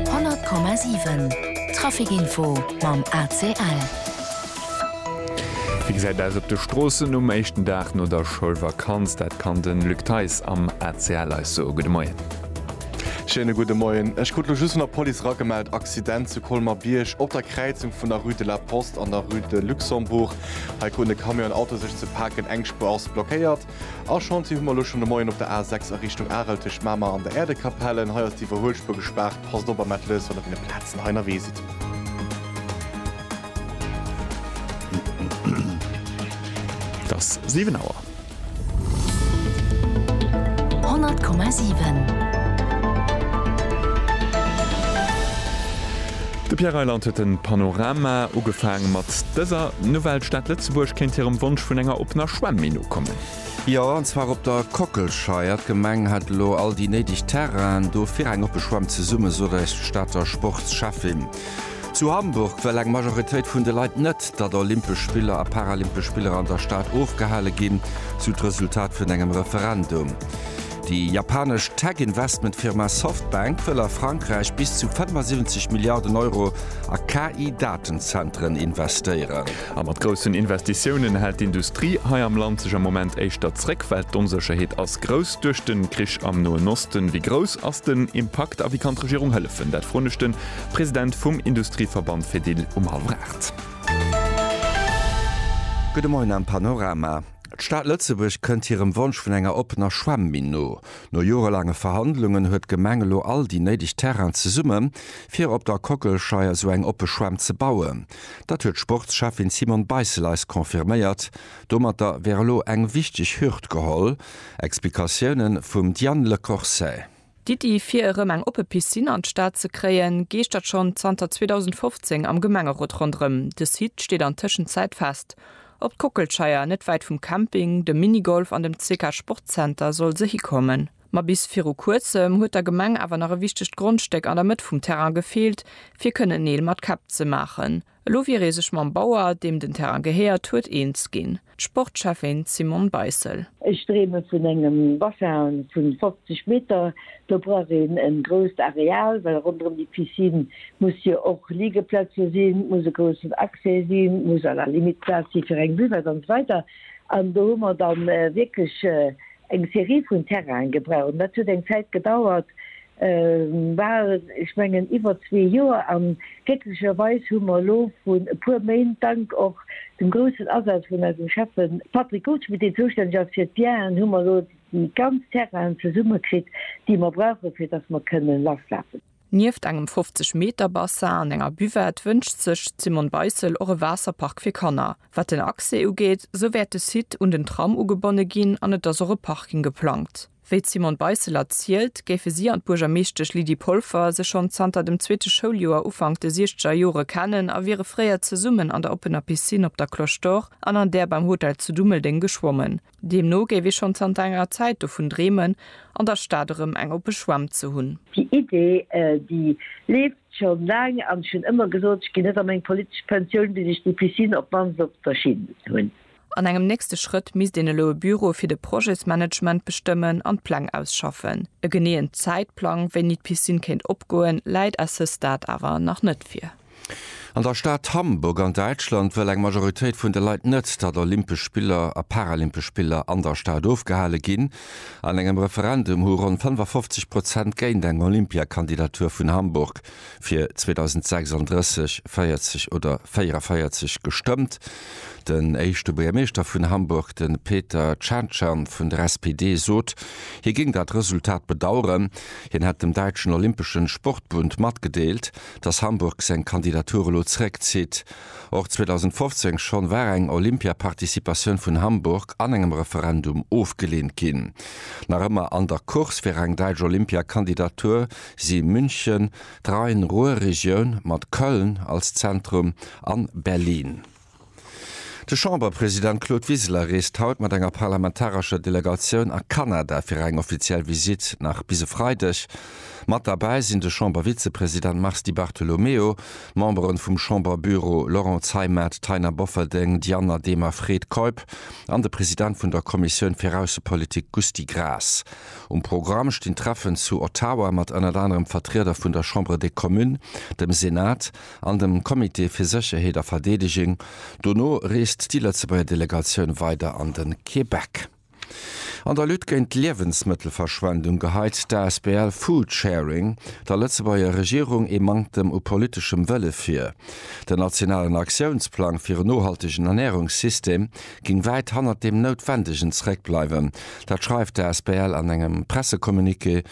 100,7 Trafic info mam ACL. Wéi gesäit et aus op de Stroossen um éischten Dag no der Schoulvakanz? Dat kann de Luc Theis am ACL eis soen. Gudde Moien. Schéine gudde Moien. Ech krut elo just vun der Police eragemellt, Accident zu Colmer-Bierg op der Kräizung vun der Rue de la Poste an der Rue de Luxembourg. Hei kruten e Camion an en Auto sech ze paken, eng Spuer ass blockéiert. A Chantier hu mer elo schonn de Moien op der A 6 a Richtung Arel tëscht Mamer an der Äerdekapell. En hei ass d'Iwwerhuelspuer gespaart. Passt op am Mettelhues wann der deene Plazen hei ënnerwee sidd. Et ass 7 Auer. 100,7. De Pierre Reyland huet den Panorama ugefaang mat dëser Nouvelle, d'Stad Lëtzebuerg kéint hirem Wonsch vun enger oppener Schwämm-Min nokommen. Jo, an zwar op der Kockelscheier. D'Gemeng hätt elo all déi néideg Terrainen do fir eng oppe Schwämm zesumme, esou eis d'Stater Sportsschäffin. Zu Hamburg wëll eng Majoritéit vun de Leit net, datt Olympesch Spiller a Paralympesch Spiller an der Stad ofgehale ginn, esou d'Resultat vun engem Referendum. Déi japanesch Tech-Investment-Firma Softbank wëll a Frankräich bis zu 75 Milliarden Euro a KI-Datenzenteren investéieren. A mat groussen Investitiounen hält d'Industrie hei am Land sech am Moment éischter zréck, well d'Onsécherheet ass grouss duerch de Krich am Noen Osten. Wéi grouss ass den Impakt a wéi kann d'Regierung hëllefen? Dat froen ech de President vum Industrieverband Fedil um hallef 8. Gudde Moien am Panorama. D'Stad Lëtzebuerg kënnt hirem Wonsch vun enger oppener Schwämminn no. No jorelaange Verhandlungen huet d'Gemeng elo all déi néideg Terrainen zesumme fir op der Kockelscheier esou eng oppe Schwämm ze bauen. Dat huet d'Sportscheffin Simone Beissel eis confirméiert. Domatter wär elo eng wichteg Hürd geholl. Explikatioune vum Diane Lecourcey. D'Iddi fir erëm eng oppe Piscine an d'Stad ze kréien, geeschtert schonn zanter 2015 am Gemengerot ronderëm. De Site steet an Tëschenzäit fest. Op d'Kockelscheier, net wäit vum Camping, dem Minigolf an dem CK Sportzenter soll se hikommen. Ma bis viru kuerzem huet der Gemeng awer nach e wichtegt Grondstéck an der Mëtt vum Terrain gefeelt, fir kënnen Neel mat Käpp ze maachen. Elo wier ee sech mam Bauer, deem den Terrain gehéiert huet, eens ginn, d'Sportschäffin d'Simone Beissel. Ech dreeme vun engem Bassin vu 50 Meter. Do brauch een e grousst Areal, well ronderëm déi Piscine muss jo och Liegeplätze sinn, et muss e groussen Accès sinn, et muss à la limite Plaz si fir eng Buvette an esou weider. An do hu mer da wierklech eng Serie vun Terraine gebraucht. Dat huet eng Zäit gedauert, war, ech mengen iwwer zwee Joer, an glécklecherweis hu mer elo vrun e puer Méint, dank och dem groussen Asaz vun eisem Schäffe Patrick Goldschmidt, deen zoustänneg ass fir d'Bienen, hu mer elo déi ganz Terrainen zesumme kritt, déi mer brauchen, fir dass mer kënnen lasschaffen. Nieft engem 50 Meter Bassin an enger Buvette wënscht sech d'Simone Beissel och e Waasserpark fir Kanner. Wat den Accès ugeet, esou wäert de Site un den Tram ugebonne ginn an et ass och e Parking geplangt. Wéi d'Simone Beisseler zielt, géife si an d'Buergermeeschtesch Lydie Polfer sech schonn zanter dem zweete Schouljoer Ufank de siechzeger Jore kennen a wiere fréier zesummen an der oppener Piscine op der Cloche d'Or an an där beim Hotel zu Dummeldeng geschwommen. Deemno géif ee schonn zanter enger Zäit dovun dreemen, an der Stad erëm eng oppe Schwämm ze hunn. Déi Idee, déi leeft schonn laang an ech hunn ëmmer gesot, ech ginn net a meng politesch Pensioun, bis ech déi Piscine op d'mannst op der Schinn hunn. An engem nächste Schrëtt misst een elo e Büro fir de Projetsmanagement bestëmmen an d'Pläng ausschaffen. E geneeën Zäitplang, wéini d'Piscine kéint opgoen, läit à ce stade awer nach net vir. An der Stad Hamburg an Däitschland wëll eng Majoritéit vun de Leit net, datt Olympesch Spiller a Paralympesch Spiller an der Stad ofgehale ginn. An engem Referendum hu ronn 55 Prozent géint eng Olympiakandidatur vun Hamburg Fir 2036 40 oder 44 gestëmmt. Den éischte Buergermeeschter vun Hamburg, de Peter Tschentschan vun der SPD, sot, hie géing dat Resultat bedaueren. Hien hätt dem däitschen Olympeschen Sportbund matgedeelt, datt Hamburg seng Kandidatur elo zeréckzitt. Och 2015 schonn war eng Olympia-Participatioun vun Hamburg an engem Referendum ofgeleent ginn. Nach ëmmer an der Course fir eng däitsch Olympia-Kandidatur si München, d'Rhein-Ruhr-Regioun mat Köln als Zentrum an Berlin. De Chamberpresident Claude Wiseler reest haut mat enger parlamentarescher Delegatioun a Kanada fir eng offiziell Visitt, nach bis e Freideg. Mat derbäi sinn de Chambervizepresident Mars Di Bartolomeo, d'Memberen vum Chamberbüro Laurent Zeimet, Taina Bofferding, Diana Demer, Fred Keup an de President vun der Kommissioun fir Aussepolitik Gusty Graas. Um Programm stinn Treffen zu Ottawa mat ënnert anerem Vertrieder vun der Chambre des Communes, dem Senat an dem Comité fir Sécherheet a Verdeedeging. Dono reest déi Lëtzebuerger Delegatioun weider an de Québec. An der Lutte géint d'Liewensmëttelverschwendung geheit d'Asbl Foodsharing der Lëtzebuerger Regierung ee Manktem u politeschem Wëlle vir. Den nationalen Aktiounsplang fir en nohaltegen Ernärungssystem géing wäit hannert deem Noutwendegen zeréckbleiwen. Dat schreift d'Asbl an engem Pressecommuniqué.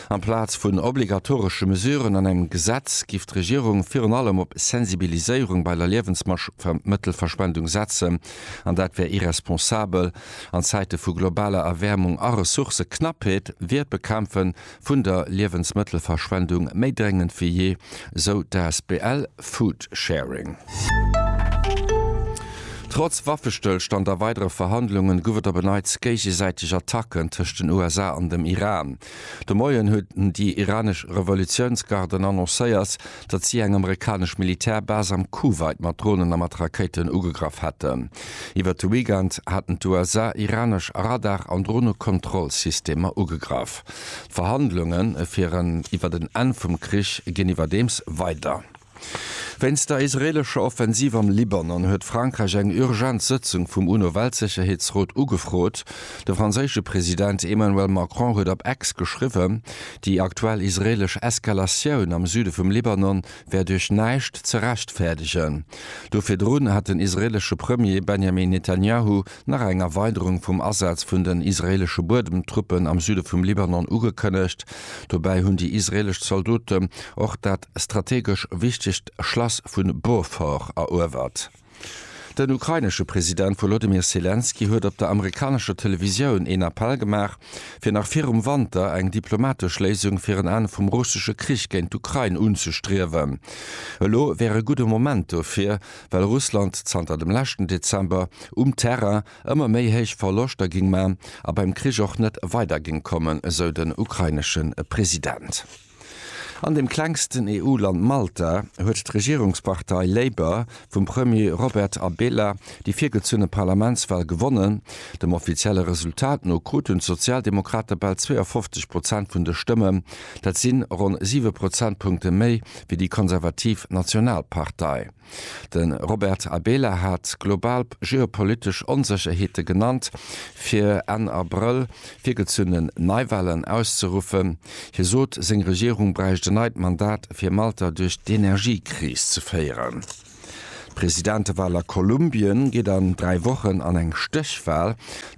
Amplaz vun obligatoresche Mesuren an engem Gesetz giff d'Regierung virun allem op Sensibiliséierung bei der Liewensmëttelverschwendung setzen, an dat wär irresponsabel. An Zäite vu globaler Erwäermung a Ressourcëknappheet wier d'Bekämpfe vun der Liewensmëttelverschwendung méi dréngend wéi jee, esou d'Asbl Food Sharing. Trotz Waffestëllstand a weidere Verhandlungen gouf et op en Neits géigesäiteg Attacken tëscht den USA an dem Iran. De Moien hunn déi iranesch Revolutiounsgarden annoncéiert, datt si eng amerikanesch Militärbase am Kuwait mat Dronen a mat Rakéiten ugegraff hätten. Iwwert de Weekend haten d'USA iranesch Radar an Dronekontrollsystemer ugegraff. D'Verhandlunge fir en iwwert en Enn vum Krich ginn iwwerdeems weider. Wéinst der israeelescher Offensiv am Libanon huet Frankräich eng urgent Sëtzung vum UNO-Weltsécherheetsrot ugefrot. De franséische President Emmanuel Macron huet op X geschriwwen, Déi aktuell israeelesch Eskalatioun am Süde vum Libanon wär duerch näischt ze rechtfäerdegen. Do virdrun hat den israeelesche Premier Benjamin Netanjahu nach eng Erweiderung vum Asaz vun den israeelesche Buedemtruppen am Süde vum Libanon ugekënnegt. Dobäi hunn déi israeelesch Zaldoten och dat strategesch wichtegt Schlass vu Beaufort eruewert. Den ukrainesche President Wolodymyr Selenskyj huet op der amerikanescher Televisioun een Appell gemaach, fir nach virum Wanter eng diplomatesch Léisung fir en Enn vum russesche Krich géint d'Ukrain unzestriewen. Elo wär e gudde Moment dofir, well Russland zanter dem leschten Dezember um Terrain ëmmer méi héich Verloschter géing man a beim Krich och net weider géing kommen, esou den ukrainesche President. An dem klengsten EU-Land Malta huet d'Regierungspartei Labour vum Premier Robert Abela déi virgezunne Parlamentswal gewonnen. Dem offizielle Resultat no kruten d'Sozialdemokrate bal 52 Prozent vun de Stëmmen, dat si ronn siwe Prozentpunkte méi wéi déi konservativ Nationalpartei. De Robert Abela hat global geopolitesch Onsécherheete genannt, fir Enn Abrëll virgezunne Neiwahlen auszeruffen. Hie sot, seng Regierung bräicht en neit Mandat, fir Malta duerch d'Energiekris ze féieren. D'Presidentewahl a Kolumbien geet an dräi Wochen an eng Stéchwahl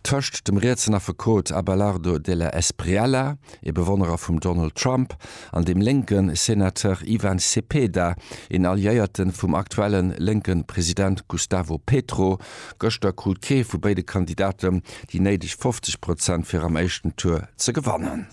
tëscht dem rietsen Affekot Abelardo de la Espriella, ee Bewonnerer vum Donald Trump, an dem lénke Senateur Ivan Cepeda, een Alliéierte vum aktuelle lénke President Gustavo Petro. Gëschter krut kee vu béide Kandidaten déi néideg 50 Prozent fir am éischten Tour ze gewannen.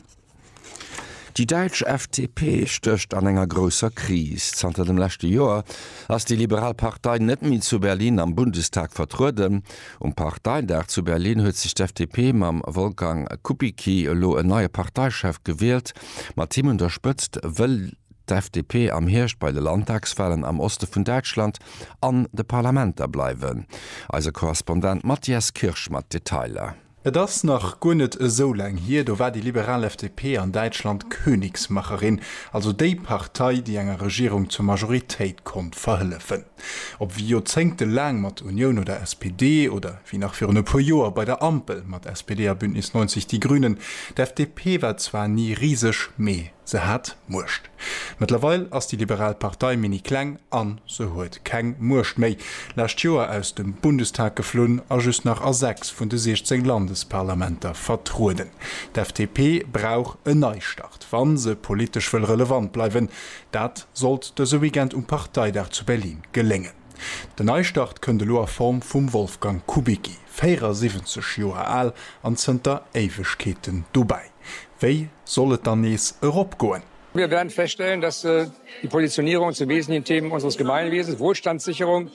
Déi däitsch FDP stécht an enger grousser Kris. Zanter dem leschte Joer ass déi liberal Partei net méi zu Berlin am Bundestag vertrueden. Um Parteidag zu Berlin huet sech d'FDP mam Wolfgang Kubicki elo en neie Parteichef gewielt. Mat him un der Spëtzt wëll d'FDP am Hierscht bei de Landtagswalen am Oste vun Däitschland an de Parlamenter bleiwen. Eise Korrespondent Matthias Kirsch mat Detailer. Et ass nach guer net esou laang hier, do war déi liberal FDP an Däitschland Königsmacherin, also déi Partei, déi enger Regierung zur Majoritéit konnt verhëllefen. Ob wéi Joerzéngte laang mat Union oder SPD, oder wéi nach virun e puer Joer bei der Ampel mat SPD a Bündnis 90 Die Grünen, d'FDP war zwar ni riseg, mee se hat Muecht. Mëttlerweil ass déi liberal Partei mini kleng a se huet keng Muecht méi. Lescht Joer aus dem Bundestag geflunn a just nach a 6 vun de 16 Landesparlamenter vertrueden. D'FDP brauch en Neistart, wa se politesch wëll relevant bleiwen. Dat sollt dëse Weekend um Parteidag zu Berlin geléngen. Den Neistart kënnt elo a Form vum Wolfgang Kubicki, 74 Joer al an zënter Éiwegkeeten dobäi. Wéi soll et dann nees erop goen? Mir wäerten feststellen, dass die Positionierung zu wesentlichen Themen unseres Gemeinwesens, Wohlstandssicherung,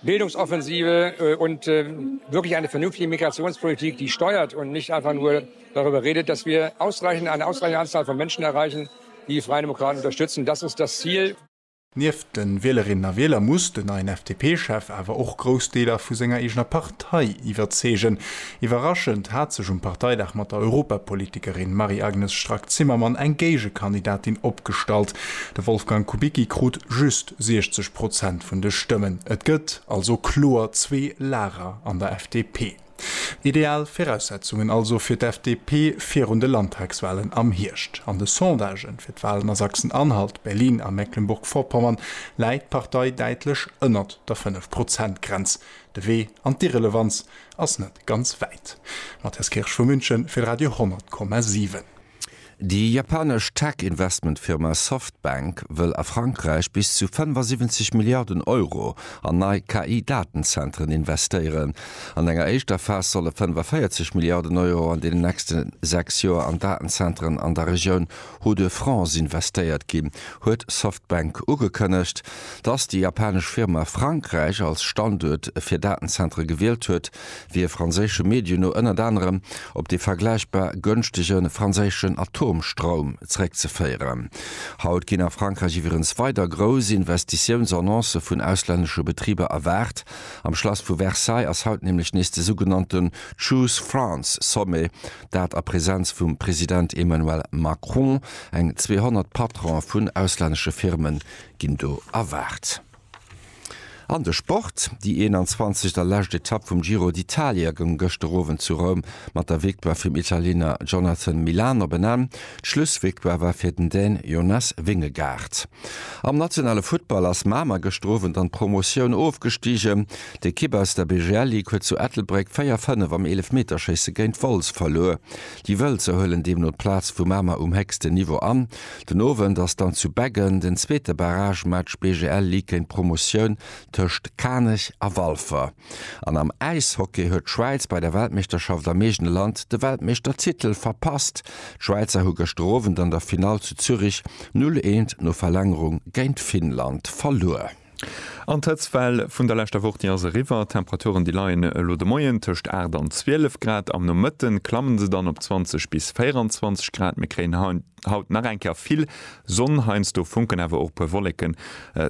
Bildungsoffensive und wirklich eine vernünftige Migrationspolitik, die steuert und nicht einfach nur darüber redet, dass wir eine ausreichende Anzahl von Menschen erreichen, die die Freien Demokraten unterstützen. Das ist das Ziel. Nieft de Wielerinnen a Wieler muss den neien FDP-Chef awer och grouss Deeler vu senger eegener Partei iwwerzeegen. Iwwerraschend hat sech um Parteidag mat der Europapolitikerin Marie-Agnes Strack-Zimmermann eng Géigekandidatin opgestallt. De Wolfgang Kubicki krut just 60 Prozent vun de Stëmmen. Et gëtt also kloer zwee Lager an der FDP. Ideal Viraussetzungen also fir d'FDP virun de Landtagswalen am Hierscht. An de Sondagen fir d'Walen a Sachsen-Anhalt, Berlin a Mecklenburg-Vorpommern läit d'Partei däitlech ënnert der 5 Prozent Grenz. De Wee an d'Irrelevanz Ass net ganz wäit. Matthias Kirsch vu München fir Radio 10,7. Déi japanesch Tech-Investmentfirma Softbank wëll a Frankräich bis zu 75 Milliarden Euro an nei KI-Datenzentren investéieren. An enger éischter Phas solle 45 Milliarden Euro an deenen nächste sechs Joer an Datenzentren an der Regioun Hodde Francs investéiert ginn, huet Softbank ugekënnegt. Dass déi japanesch Firma Frankräich als Standuert fir Datenzentere gewielt huet, wier franséische Medien no ënnert anerem op dee vergläichbar gënschtege franséischen Atomstroum zeréckzeféieren. Haut ginn a Frankräich iwwerens weider grouss Investitiounsannoncë vun auslännesche Betriber erwaart. Am Schlass vu Versailles ass haut nämlech nees de sougenannten Choose France Sommet dat a Präsenz vum President Emmanuel Macron. Eng 200 Patronen vun auslännesche Firme ginn do erwaart. An de Sport, Déi 21. a lescht Etapp vum Giro d'Italia goung gëschter Owend zu Roum mat der Victoire vum Italiener Jonathan Milan op en Enn. D'Schlussvictoire war fir den Dän Jonas Vingegaard. Am nationale Futtball ass Mamer gëschter Owend an d'Promotioun ofgestigen. D'Ekipp aus der BGL Ligue huet zu Ettelbréck 4, 5 am Eelefmeterschéisse géint Wolz verluer. Déi Wëlzer huelen deemno d'Plaz vu Mamer um héchsten Niveau an. Den Owend ass dann zu Beggen den zweete Barragematch BGL Ligue géint Promotioun tëscht Kanech a Walfer. An am Äishockey huet d'Schwäiz bei der Weltmeeschterschaft am eegene Land de Weltmeeschtertitel verpasst. D'Schwäizer hu gëschter Owend an der Finall zu Zürich 0, 1 no Verlängerung géint Finnland verluer. An d'Hëtztwell vun der leschter Woch, déi ass eriwwer. D'Temperaturen, déi leien elo de Moien tëscht 8 an 12 Grad. Am Nomëtte klamme se dann op 20 bis 24 Grad. Mir kréien haut nach eng Kéier vill Sonn, heiansdo funken awer och e puer Wolleken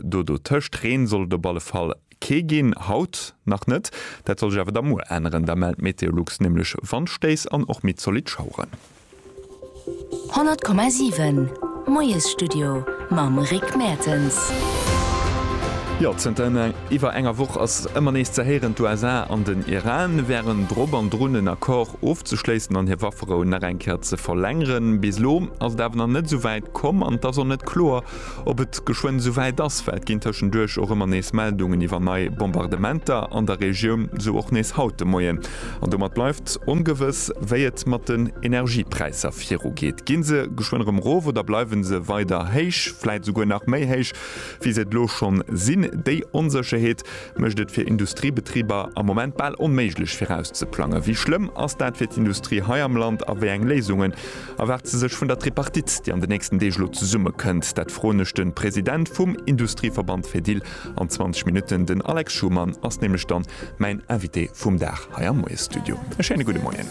do dotëscht. Reen soll et op alle Fall kee ginn, haut nach net. Dat soll sech awer da muer änneren, da mellt Meteolux nämlech Wandstéiss an och méi zolidd Schaueren. 100,7 Moiesstudio mam Rick Mertens. Jo, zënter iwwer enger Woch ass ëmmer nees ze héieren, d'USA an den Iran wären drop an drun en Accord ofzeschléissen an hir Wafferou nach eng Kéier ze verlängeren. Bis elo ass et awer nach net esou wäit komm an et ass och net kloer, Ob et geschwënn esou wäit ass, well et ginn tëschenduerch och ëmmer nees Meldungen iwwer nei Bombardementer an der Regioun, esou och nees haut de Moien. An domat bleift ongewëss, wéi et mat den Energiepräisser virugeet. Gi se geschwënn erëm erof oder bleiwe se weider héich, vläit esouguer nach méi héich, wéi se et elo scho sinn? Déi Onsécherheet mécht et fir Industriebetriber am Moment bal onméiglech virauszeplangen. Wéi schlëmm ass dat fir d'Industrie hei am Land a wéi eng Léisungen Erwaart se sech vun der Tripartite, déi an den nächsten Deeg elo zesummekënnt? Dat froen ech de President vum Industrieverband Fedil an 20 Minutten. Den Alex Schumann ass nämlech dann mäin Invité vum Dag hei am Moie-Studio. E schéine gudde Moien.